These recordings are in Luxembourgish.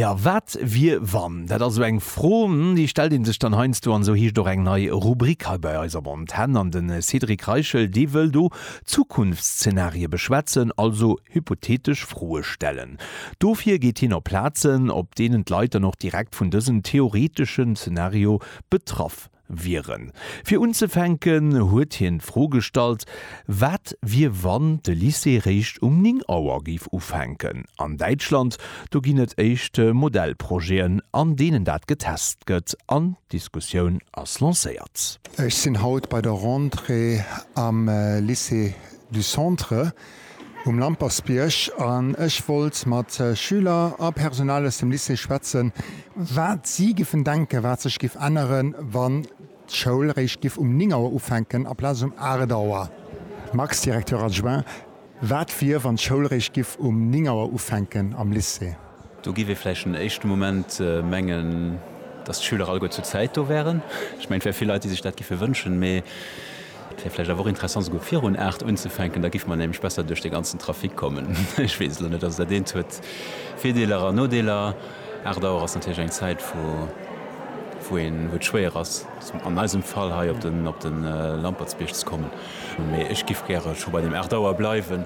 Ja, wat wier wann? Dat ass esou eng Fro, déi stellt ee sech dann heiansdo an esou heescht och eng nei Rubrik hei bei eis am On d'Hänn. An de Cédric Reichel, dee wëll do Zukunftszeenarie beschwätzen, also hypothetesch Froe stellen. Dofir geet hien op Plazen, op deenen d'Leit dann och direkt vun dësem theoreteschen Zeenario betraff Wieren. Fir unzefänken huet hien d'Fro gestallt, wat wier wann de Lycée réischt um 9 Auer géif ufänken. An Däitschland, do ginn et éischt Modellprojeten an deenen dat getest gëtt an d'Diskussioun ass lancéiert. Ech sinn haut bei der Rentrée am Lycée du Centre. um Lampersbierg an ech wollt mat Schüler a Personal aus dem Lycée schwätzen, wat si giffen denken, wat sech giff änneren, wann d'Schoul réischt giff um 9 Auer ufänken aplaz um 8 Auer. Max, Directeur adjoint, Wat wier, wann d'Schoul réischt giff um 9 Auer ufänken am Lycée? Do giff ee vläicht en éischte Moment mengen, dass d'Schüler alleguer zur Zäit do wären. Ech mengen, et wär vill Leit, déi sech dat giffe wënschen, mee et wär vläicht awer och interessant, souguer virun 8 unzefänken. Da giffe mer nämlech besser duerch dee ganzen Trafic kommen. Ech weess elo net, also dat eent huet Virdeeler an Nodeeler. 8 Auer ass natierlech eng Zäit, wou een, wou et schwéier ass, an eisem Fall hei op de Lampertsbierg ze kommen. Mee ech giff gäre scho bei deem 8 Auer bleiwen.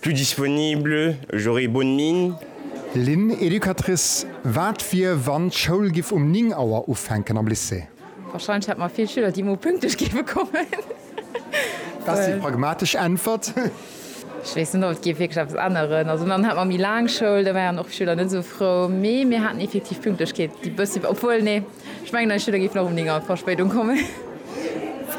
Plus disponible, j'aurai bonne mine. Lynn, Educatrice, Wat wier, wann d'Schoul giff um 9 Auer ufänken am Lycée? Wahrscheinlech hätte mer vill Schüler, déi emol pünktlech géife kommen. Dat ass déi pragmatesch Äntwert. Ech weess net, ob et géif wierklech eppes änneren. Also dann hätt mer méi laang Schoul, da wäeren och d'Schüler net esou frou. Mee mir haten effektiv d'Pünktlechkeet déi bëssi, obwuel, nee. Ech mengen eis Schüler géifen och um 9 Auer Verspéidung kommen.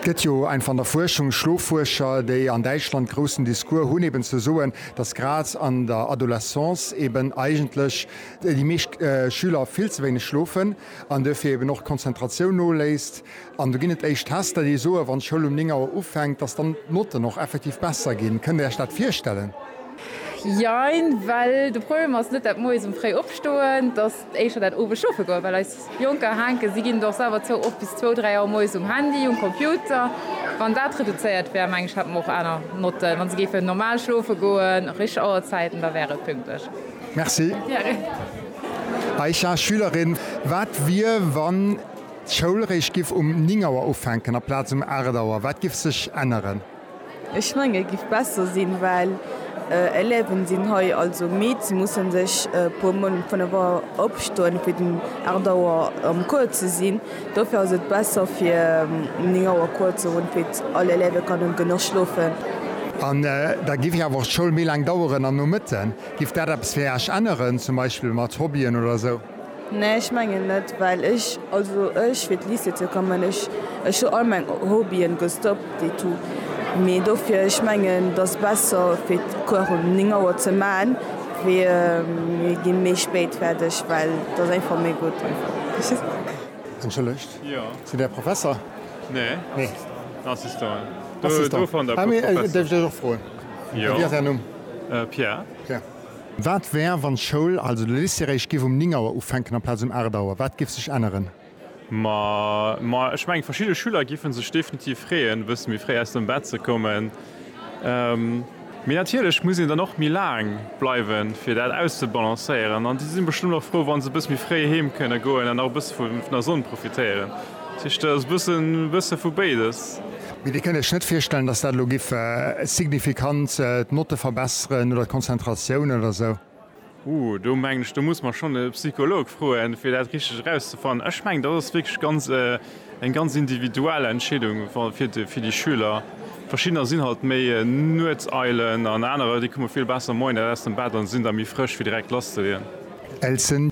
Et gëtt jo einfach an der Fuerschung Schloffuerscher, déi an Däitschland groussen Discours hunn, eben ze soen, dass grad an der Adolescence eben eigentlech déi meescht Schüler vill ze wéineg schlofen an duerfir eben och d'Konzentratioun noléisst. An do ginn et éischt Tester, déi soen, wann d'Schoul um 9 Auer ufänkt, dass dann d'Notten och effektiv besser ginn. Kënnt Dir Iech dat virstellen? Jein, well de Problem ass net dat moies um fréi Opstoen. éischer dat owes schoffe goen, well eis Jonker hänken, si ginn et och selwer zou, oft bis zwou, dräi Auer moies um Handy, um Computer. Wann dat reduzéiert wär, mengen ech, hätte mer och aner Notten. Wa se géifen normal schlofe goen, richteg Auerzäiten, da wär et pünktlech. Merci. Aisha, Schülerin, Wat wier, wann d'Schoul réischt giff um néng Auer ufänken aplaz um aacht Auer? Wat giff sech änneren? Ech mengen et giff besser sinn well Élèven sinn hei also midd, se mussen sech e puer mol um 5 Auer opstoen fir den 8 Auer am Cours ze sinn. Dofir ass et besser fir um 9 Auer Cours ze hunn fir all Élève kënnen genuch schlofen. An da giff awer och d'Schoul méi laang daueren an Nomëtten. Giff dat eppes fir Iech änneren zum Beispill mat Hobbyen oder sou? Nee ech mengen net well ech also ech fir d'Lycée ze kommen ech ech hu all meng Hobbyen gestoppt et tout mee dofir ech mengen dass besser fir d'Cours um 9 Auer ze man wéi mir gi méi spéit fäerdeg well et ass einfach méi gutt einfach. Wat wär, wann d'Schoul, also de Lycée eréischt giff um 9 Auer ufänken amplaz um 8 Auer? Wat giff sech änneren? Ma, ma ech mengen, verschidde Schüler giffe sech definitiv freeën, e bësse méi fréi aus dem Bett ze kommen. Mee natierlech muss een dann och méi laang bleiwen, fir dat auszebalancéieren. An déi si bestëmmt och frou, wa se e bësse méi fréi heem kënne goen an nach e bësse vun der Sonn profitéieren. Tisch, dat ass bëssen e bësse vu béides. Mee Dir kënnt Iech net virstellen, datt dat elo giff signifikant d'Notte verbesseren oder d'Konzentratioun oder esou? Huh, do mengen ech, do muss mer schonn e Psycholog froen, fir dat richteg erauszefannen. Ech mengen, dat ass wierklech ganz eng ganz individuell Entscheedung fir déi Schüler. Verschiddener sinn halt méi Nuetseilen an anerer, déi komme vill besser moies aus dem Bett a sinn da méi frësch, fir direkt lasszeleeën. Elsen,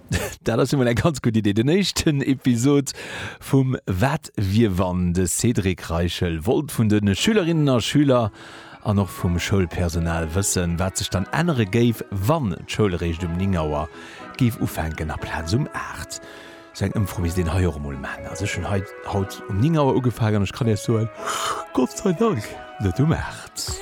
Dat ass jo mol eng ganz gutt Idee. Den éischten Episod vum Wat wier wann? De Cédric Reichel wollt vun de Schülerinnen a Schüler an och vum Schoulpersonal wëssen, wat sech dann ännere géif, wann d'Schoul eréischt um 9 Auer géif ufänken aplaz um 8. Sou eng Ëmfro misst een hei och emol maachen. Also ech hunn hei haut um 9 Auer ugefaangen an ech kann Iech soen, Gott sei Dank net um 8.